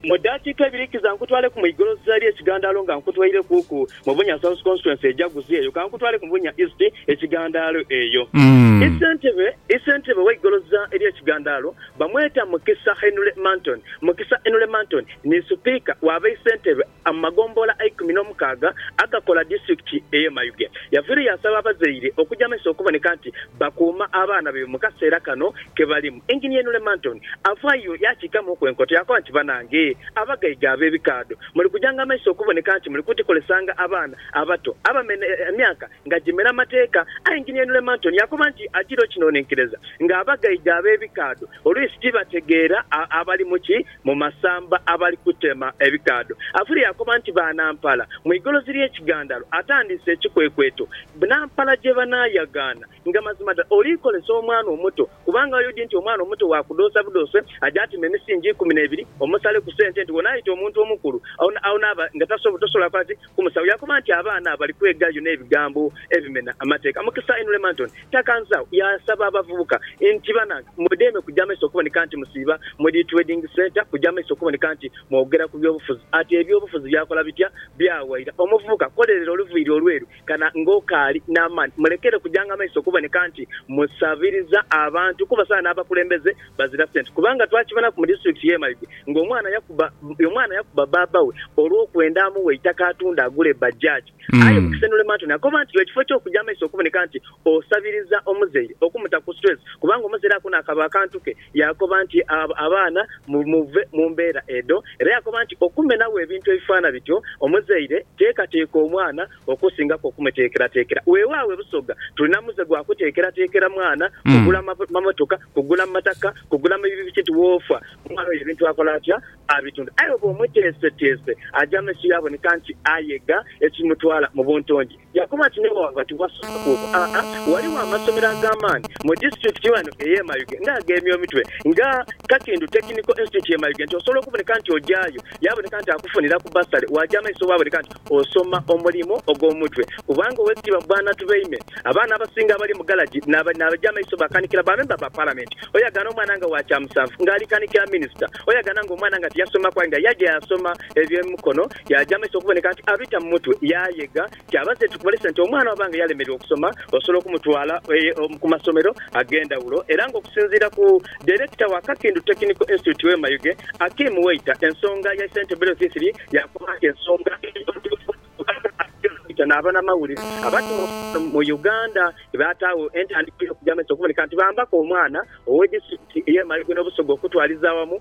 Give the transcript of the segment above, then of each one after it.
Mu daakiika ibiri kiza nkutwaleku mu igolosa lye kigandaalo nga nkutweirekuuku mu Bunya South Constituency ejaguzi eyo ka nkutwaleku mu Bunya East ekigandaalo eyo. Isentebe Isentebe we igolosa lye kigandaalo bamweta Mukisa Henry Manton. Mukisa Henry Manton ni Sipiika wa Baisentebe mu magombolola eikumi n'omukaaga agakola Disitulikiti eye Mayuge. Yaviire yaasaba abazaire okuja maiso okuboneka nti bakuuma abaana baibwe mu kaseera kano. ke balimu. Enginia Inule Manton avaayo yaakiikamuuku enkoto yaakoba nti, Banange abagaiga ab'ebikaadho, muli kujanga amaiso okuboneka nti muli kutikolesanga abaana abato abamene emyaka nga gimera amateeka. Aye Enginia Inule Manton yaakoba nti agira okinonenkereza nga abagaiga ab'ebikaadho oluisi tibategeera abali mu ki mu masamba abali kutema ebikaadho. Avule yaakoba nti Banampala mu igolozi ly'ekigandalo atandiise ekikwekweto Bnampala gye banaayagaana Nga mazima dha oliikolesa omwana omuto, kubanga oidhi nti omwana omuto wa kudhoosa budhoose, aje atime emisingi ikumi n'ebiri, omusale ku sente nti wonaaita omuntu omukulu, agho naaba nga tosobola kola ki? Kumusaba. Yaakoba nti, Abaana abo bali kwegayo n'ebigambo ebimena amateeka. Mukisa Ainule Manton takanzagho yaasaba abavubuka nti, Banange, mwedeme kuja maiso okuboneka nti musiiba mu dhi trading centre, kuja maiso okuboneka nti mwogera ku byobufuzi. Ati, Ebyobufuzi byakola bitya? Byawaira. Omuvubuka, kolerera oluviiri olweru Kana ng'okaali n'amaani, mulekere kujanga maiso kuboneka nti musabiriza abantu kuba saha n'abakulembeze bazira sente kubanga twakibonaku mu disitulikiti y'e Mayuge ng'omwana yakuba omwana yakuba bbaabba we olw'okwenda amuwe eitaka atunde agule bbajjaaji aye Mukisenule Mantoni akoba nti ekifo ky'okuja amaiso okuboneka nti osabiriza omuzaire okumuta ku situleesi kubanga omuzaire akoona akaba akantu ke Yaakoba nti, Abo abaana muve mu mbeera edho. Era yaakoba nti, Okumenagho ebintu ebifaana bityo, omuzaire teekateeka omwana okusingaku okumuteekerateekera. Weewaawo e Busoga tulina muze gwa kuteekerateekera mwana, kugula mamotoka, kugula mataka, kugula mapikipiki nti woofa omwana oyo ebintu akola atya? Abitunda. Aye bw'omuteeseteese aja mu maiso yaaboneka nti ayega ekimutwala mu buntongi. Yakoba nti, Naye waba tiwasoose kuuku, aa, ghaligho amasomero ag'amaani mu disiturikiti ghano ey'e Mayuge nga ageemya omitwe nga Kakindu Technical Institute y'e Mayuge nti osobola okuboneka nti ogyayo yaaboneka nti akufuniraku bbasale waagya amaiso waaboneka nti osoma omulimu ogw'omu mutwe kubanga Owekitiibwa Bwana Tubeime abaana abasinga abali mu galagi n'abaja amaiso bakanikira ba memba ba Palamenti oyagana omwana nga wa kyamusanvu nga alikanikira minisita oyagana nga omwana nga tiyasomaku aye nga yaja yasoma eby'emikono Yaaja amaiso okuboneka nti abita mu mutwe, yaayega ti abaze ekikumulesa nti omwana waba nga yalemererwa okusoma, osobola okumutwala ku masomero ag'endhawulo era ng'okusinziira ku Dairekita wa Kakindu Technical Institute Wema Yuge, Akim Weita, ensonga ya St Bello Thithili yakoba nti ensonga entuufu kubanga Akim Weita n'abanamawulire abatuula okusinga mu Uganda baataagho entandikwa y'okuja amaiso okuboneka nti bambaku omwana ow'e disitulikiti y'e Mayuge n'Obusoga okutwaliza awamu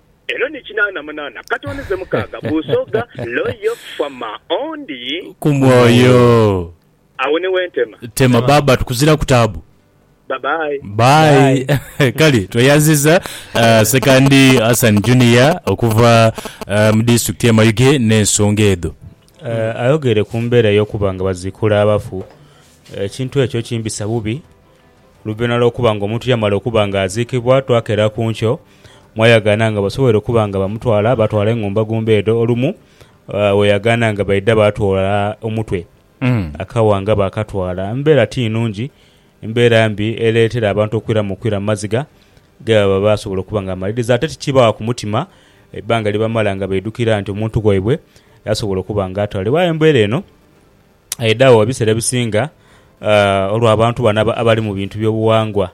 Eno ni kinaana munaana katoni ze mukaaga busoga loyo fama ondi. Ku mwoyo. Awo ni wentema. Tema baba tukuzilaku taabu. Bye bye. Bye. Kale tweyanziza Ssekandi Hassan Junior okuva mu disitulikiti ye Mayuge n'ensonga edho. Ayogeire ku mbeera ey'okuba nga baziikula abafu, ekintu ekyo kimbisa bubi. Oluvanhuma lw'okuba nga omuntu yamala okuba nga aziikibwa twakera ku nkyo mwayagaana nga basoboire okuba nga bamutwala baatwala engumbagumba edho olumu weyagaana nga baidha baatwala omutwe akawa nga baakatwala. Mbeera ti nnungi, mbeera mbi ereetera abantu okwiramu okwira mu maziga ge baba baasobola okuba nga bamaliriza ate tikibagha ku mutima ebbanga lye bamala nga baidhukira nti omuntu waibwe yasobola okuba nga atwalibwa. Aye embeera eno aidhagho ebiseera ebisinga olw'abantu bano abali mu bintu by'obughangwa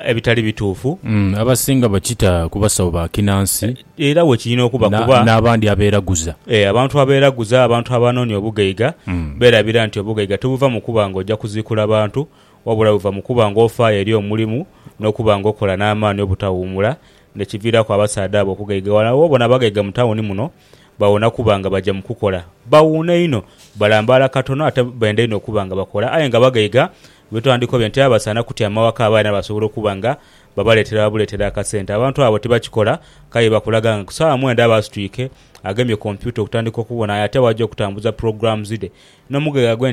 ebitali bituufu. Abasinga bakita ku basawo ba kinansi. Era bwe kirina okuba kuba. N'abandi abeeraguza. Ee, abantu abeeraguza, abantu abanoonia obugaiga, beerabira nti obugaiga tibuva mu kuba ng'oja kuziikula bantu, wabula buva mu kuba ng'ofaayo eri omulimu n'okuba ng'okola n'amaani obutawuumula, n'ekiviiraku abasaadha abo okugaiga. Wano awo w'obona abagaiga mu tawuni muno bawona kuba nga baja mu kukola. Bawuuna inho, balambaala katono ate benda inho okuba nga bakola aye nga bagaiga. Bwe twandikobe nti abasaana kutyama waka abaana basobola okuba nga babaleetera buleetera akasente, abantu abo tibakikola k'aye bakulaga nga ku saawa mwenda aba asitwike agemye kompyuta okutandika okubonayo ate bw'aja okutambuza programs dhe n'omugaiga gwe.